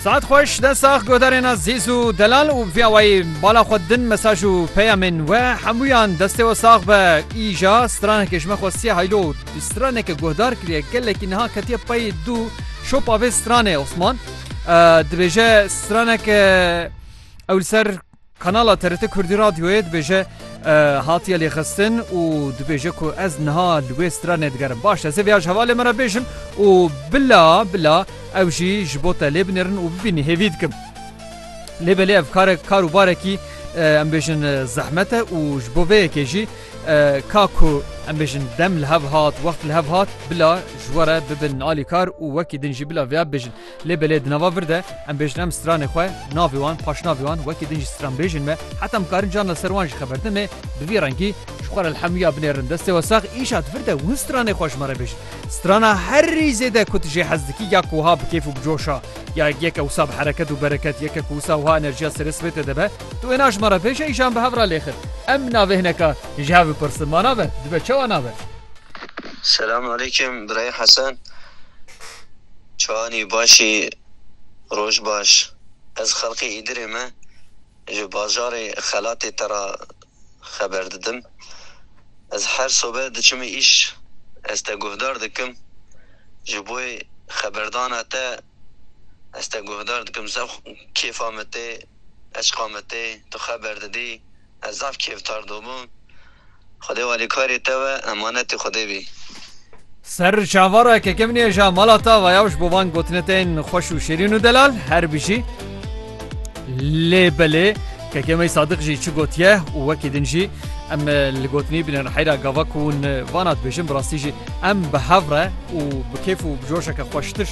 Saet xweş de sax godarêna zîz û delal û vîya wayî bala xwe din mesaj û peyamên we hemûyan destê we sax be îja stranekê ji me xwe siya heylo bi straneke guhdar kiriye gelekî niha ketiye peyê dû şopa vê stranê Osman dibêje straneke ew li ser Kanala TRT Kurdî Radyoyê dibêje hatiye lêxistin û dibêje ku ez niha li wê stranê digerim. Baş ez ê vêya ji hevalê me re bêjim û bila bila ew jî ji bo te lê binêrin û bibînî hêvî dikim. Lê belê ev karek kar û barekî em bêjin zehmet e û ji bo vê yekê jî ka ku em bêjin dem li hev hat, wext li hev hat bila ji we re bibin alîkar û wekî din jî bila vêya bibêjin. Lê belê di nava vir de em bêjin em stranê xwe, navê wan, paşnavê wan wekî din jî stranbêjên me heta em karin carna ser wan jî xeber din ê bi vî rengî ji xwe re lhemûya binêrin destê we sax îşa di vir de win stranê xwe ji me re bêjin strana herî zêde ku tu jê hez dikî ya ku wiha bi kêf û bi coşa ya yeke wisa bi hereket û bereket yeke ku wisa wiha enerjiya serê sibê tê de be tu wê na ji me re bêje îşa em bi hev re lê xir em navê hineka ji hev bipirsin ma nabe dibe çawa nabe. Selam aleyküm birayê Hesen. Çanî Başî Roj baş. Ez xelkê Îdirê me ji bajarê xelatê te ra xeber didim. Ez her sobe diçim îş ez te guhdar dikim. Ji boê xeberdana te ez te guhdar dikim. Zef kêfa me tê, eşqa me tê, tu xeber didî. Ez zaf kêftar dobûm. Xwedê alîkarê te ve emanetê Xwedê bî. Serr çavara keke min ye ja mala ta vayav ji bo van gotinê te yên xweş û şêrîn û delal her bijî. Lê belê keke me Sadiq jî çi gotiye û wekî din jî em li gotinî bin li heyra gava ku hûn vana dibêjin bi rastî jî em bi hev re û bi kêf û bi coşeke xweştir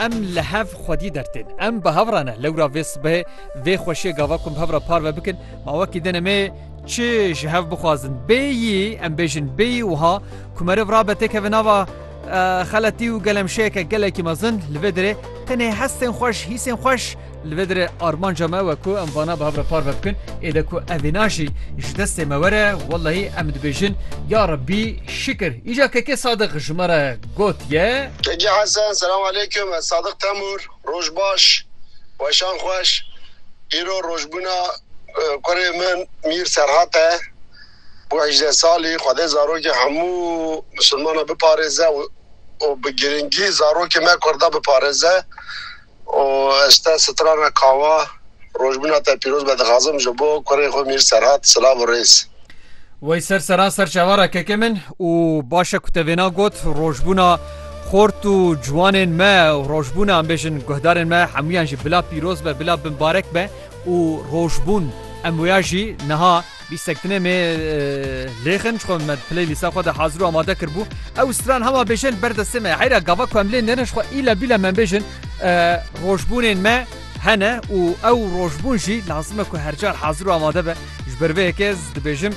em li hev xwedî dertên. Em bi hev re ne lewra vê sibehê vê xweşiyê gava ku em bi hev re parve bikin Ma wekî din em ê çi ji hev bixwazin? Bêyî em bêjin bêyî wiha ku meriv rabe têkeve nava xeletî û gelemşeyeke gelekî mezin li vê dirê tenê hestên xweş, hîsên xweş li vê dirê armanca me we ku em vana bi hev re parve bikin. Ê de ku ev vîna jî ji destê me were wellahî em dibêjin ya Rebbî şikir. Îcar Kekê Sadiq ji me re gotiye. Kekê Hesen, Selam Aleykum, ez Sadiq Temur. Roj baş, weşan xweş. Îro rojbûna kurê min Mîr Serhat e. Bû hejdeh salî. Xwedê zarokê hemû misilmanan biparêze û bi girîngî zarokê me kurda biparêze û ez te strana kawa. Rojbûna te pîroz be dixwazim ji bo kurê xwe Mîr Serhat silav û rêz. Wey ser seran ser çavara kekê min û baş e ku te vêna got rojbûna xort û ciwanên me û rojbûna em bêjin guhdarên me hemûyan jî bila pîroz be bila binbarek be û rojbûn em wêya jî niha bîstek dinêmê lêxin ji xwe me playlîsta xwe de hazir û amade kiribû ew stran hema bêjin ber destê me heyra gava ku em lê nêrin ji xwe île bîle me bêjin rojbûnên me Hene û ew rojbûn jî lazim e ku her car hazir û amade be. Ji ber vê yekê ez dibêjim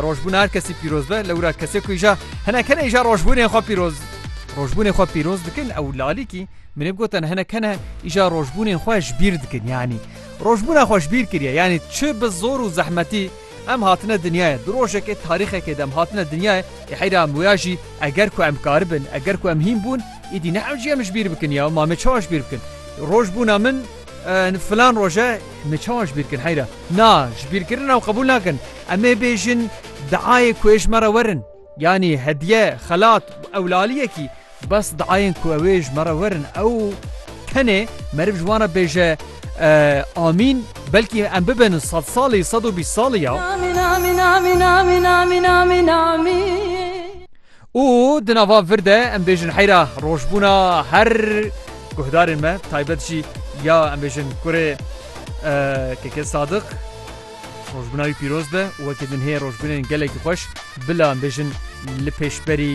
rojbûna her kesî pîroz be. Lewra kesê ku îja hinek hene îja rojbûnên xwe pîroz rojbûnê xwe pîroz dikin ew lalîkî minê gotin hinek hene îja rojbûnên xwe ji bîr dikin yanî rojbûna xwe ji bîr kiriye yanî çi bi zor û zehmetî Em hatine dinyayê, di rojekê, tarîxekê de em hatine dinyayê, yê heyra em wêya jî eger ku em karibin, eger ku em hîn bûn, îdî ne ew jî em ji bîr bikin ya ma me çawa ji bîr bikin? Roj bûna min filan roj e, me çawa ji bîr bikin heyra? Na, ji bîrkirina ew qebûl nakin. Em ê bêjin diayê ku ê ji me re werin. Yanî hediye, xelat, ewlaliyekî bes diayên ku ew ê ji me re werin ew tenê meriv ji wan re bêje amîn belkî em bibin sed salî sed û bîst salî ya. Û di nava vir de em bêjin heyra rojbûna her guhdarên me taybet jî ya em bêjin kurê keke Sadik. Rojbina wî pîroz be û wekî din heye rojbinên gelekî xweş bila em bêjin li pêşberî.